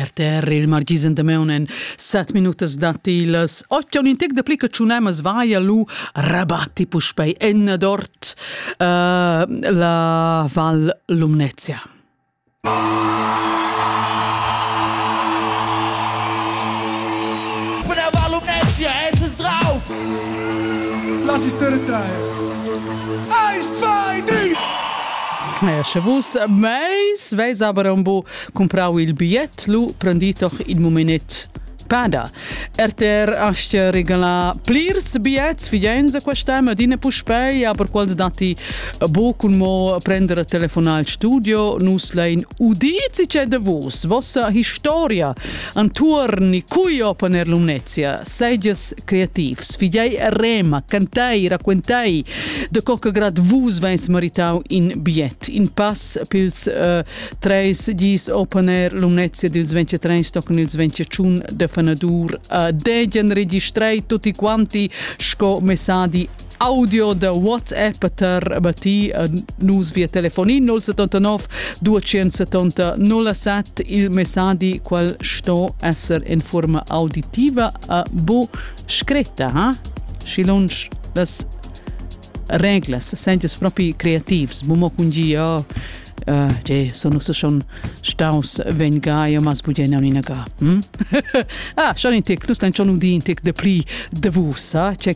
RTR il margisen de meun en set minutas datilas. Occhia un intec de pli che tschunemas vaia lu rabati puspei en dort uh, la Val Lumnezia. Von der Val Lumnezia, es ist drauf! Lass es dir drei. Eins, zwei, drei! Sche vus meis veis aber un bu comprau il bigliet, lu prendi doch il muminet Pada. RTR asce regala plirs biets figenza questa mattina puspei, aber quals dati bo cun mo prendere telefonal studio, nus lein udit che de vos, vossa historia Antuorn ni cui opponer Lumnezia, seigias creativs, fidei a rema, cantai, raquentai de co che grad vus veis maritau in biet. In pass pils uh, treis gis opponer Lumnezia dils 23 stocken ils 21 de Fanadur, a uh, degen registrei tutti quanti sco messadi audio da WhatsApp per batir nus via telefonin 079 270 07 il messadi qual sto esser en forma auditiva a bo scretta ha și lunch las reglas sentis propi creativs bumo kun dio che sono so schon staus vengai mas budien on inaga hm ah schon in tic nus len schon un di in tic de pli de vus ha che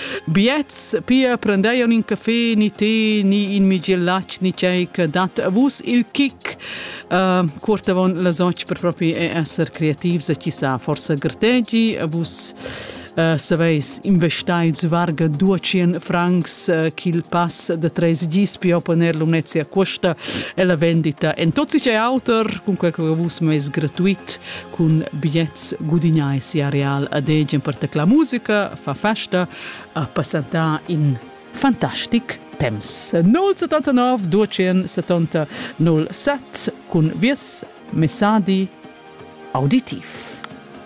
Biets, pia prendei un caffé, ni tè, ni in migiellatsch, ni tgei che dat vus il kick. Uh, cuort avon las otg per propi e esser creativs e ci sa forsa grtegi. Vus uh, saveis investai varga 200 francs uh, ch'il pass da treis gis pio poner lumnezia costa e la vendita en tot si auter, cun quel che vus meis gratuit Cun bigliets gudignai si areal ad Egen per teclar musica, fa festa, ha passentà in fantastic temps. 079 270 07 cun vies messadi auditiv.